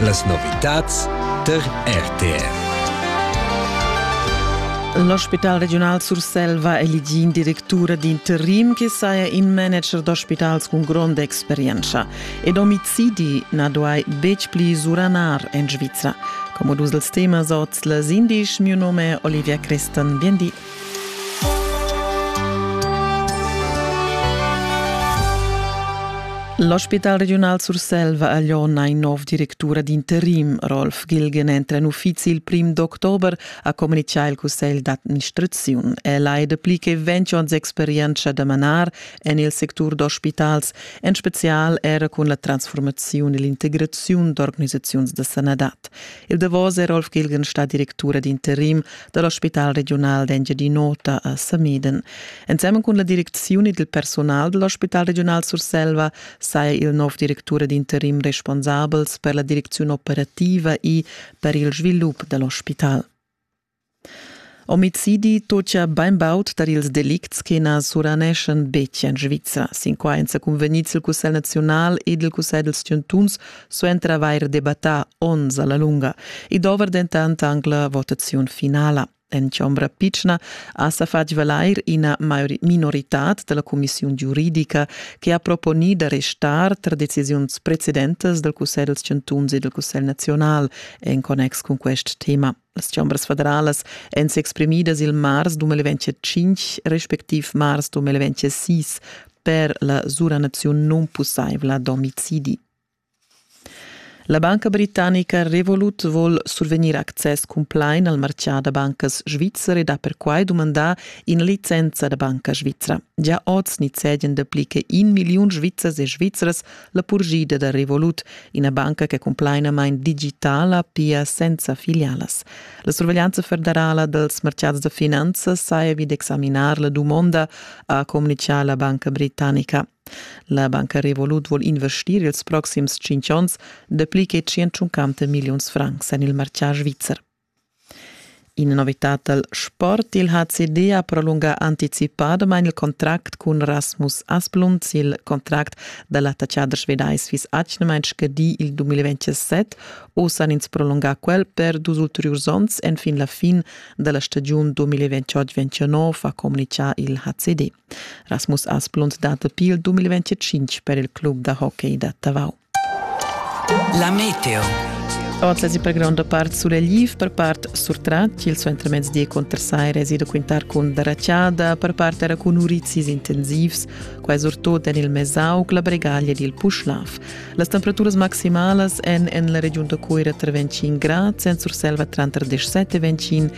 Las novitads tar RTR. L'ospital regiunal Surselva elegì in directura d'interim che saja in manager d'ospitals cun gronda experienza. Ed omicidi na duai betg pli suranar en Svizra. Come dus dels temas oz les indisch, mio nome è Olivia Crestan. Bien di. L'ospital regiunal Surselva ha lon ein nov directura d'interim. Rolf Gilgen entra en uffizi il prim d'october, ha communicà il cussegl d'administraziun. El ha dapli che 20 onns experienza da manar en il sectur d'ospitals, en spezial era cun la transformaziun e l'integraziun d'organisaziuns da sanadad. Il davos è Rolf Gilgen stà directura d'interim da l'ospital regiunal d'Engiadin'Ota a Sameden. Ensemen cun la direcziun ed il personal da l'ospital regiunal Surselva saja il nov directura d'interim responsabels per la direcziun operativa e per il svilup da l'ospital. Omicidi tocia bainbaud tar ils delicts che na suraneschan betg en Svizra. Sin quai èn sa cunvegnids il Cussegl naziunal ed il Cussegl dals chantuns suenter avair debattà onns a la lunga. I dovra dentant anc la votaziun finala. En chombra pitschna ha sa fatg valair ina minoritad da la cumissiun giuridica che ha proponì da restar tar decisiuns precedentas dal Cussegl dals chantuns e dal Cussegl naziunal en connex cun quest tema. Las chombras federalas èn s'exprimidas il mars 2005 respectiv mars 2006 per la suranaziun nunpussaivla d'omicidi. La banca britannica Revolut vol survegnir access cumplain al martgà da bancas svizzer ed ha perquai dumandà ina licenza da banca svizra. Gia oz nizzegen dapli che in milliun Svizzers e Svizzras la purgida da Revolut, ina banca che cumplainamain digitala, pia senza filialas. La surveglianza federala dels mercats da finanzas saja vid examinar la dumonda, ha communichà la banca britannica. La banca Revolut vuol investir ils proxims 5 onns dapli che 150 milliuns francs en il martgà svizzer. Ina novitad dal sport il ha CD ha prolungà anticipadamain il contract cun Rasmus Asplunds. Il contract da l'attaccader svedais fiss atgnamain scadì il 2027. Oz han ins prolungà quel per dus ulteriurs onns enfin la fin da la stagiun 2028-29, ha communitgà il HCD. Rasmus Asplunds dat dapi il 2025 per il club da hockey da Tavau. La meteo. Ord la zippa gronda part sulegliv, per part surtrat, il suo intermezzi contrassai reside quintar cun daracciada, per part era cun urizis intensivs, quai surtut en il Mesaug, la Bregaglia ed il Puschlav. Las temperaturas maximalas èn en la regiun da Cuira tra 25 grad, Sent-Surselva tranter 17 e 25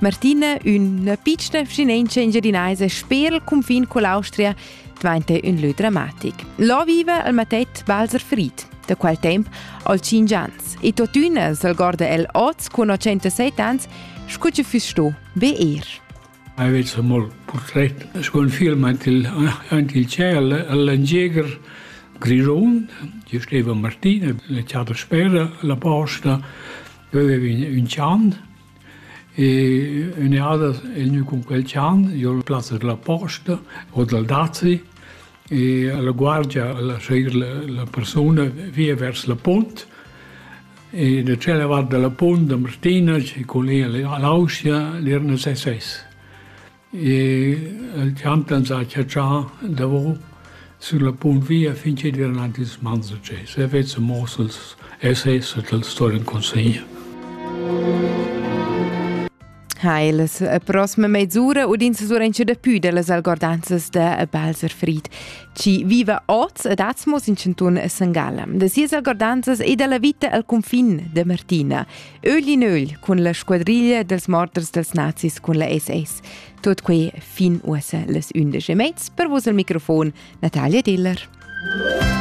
Martina, üna pitschna vschinentscha engiadinaisa sper il cunfin con l'Austria, dvainta ün lö dramatic. Là viva il matett Walser Fried, da quel temp al 5 ans, e tuottüna s'algorda el oz con 107 ans, scu che füss sto be er. Aveți mult portret sco un film aint il, aint il ciel all'Angieger Grisond, ci steva Martina, la ciata spera, la posta, aveva un, un cian, E ün'eada el gnü cun quel chan, jo al plazza da la posta o dal dazi e a la guardia a laschair la persuna via vers la punt e da tschella vart da la punt da Martina cun ella a l'Austria l'erna ses ses. El champ d'ans ha chatschà davo sün la punt via fin chi'd vain aint ils mans da Geis. El vezza muoss als SS e tals sto in consegna. Ha las eh, prossima mezz'ura udin se surencha da pü dellas algordanzas da Balser Fried, chi viva oz ad Atzmos in cantun Sangala. Da sias algordanzas e dalla vita al confin de Martina, Ögl in ögl cun la squadriglia dels morters dels nazis cun la SS. Tot quei fin uossa les 11 mezs per vos al microfon Natalia Diller.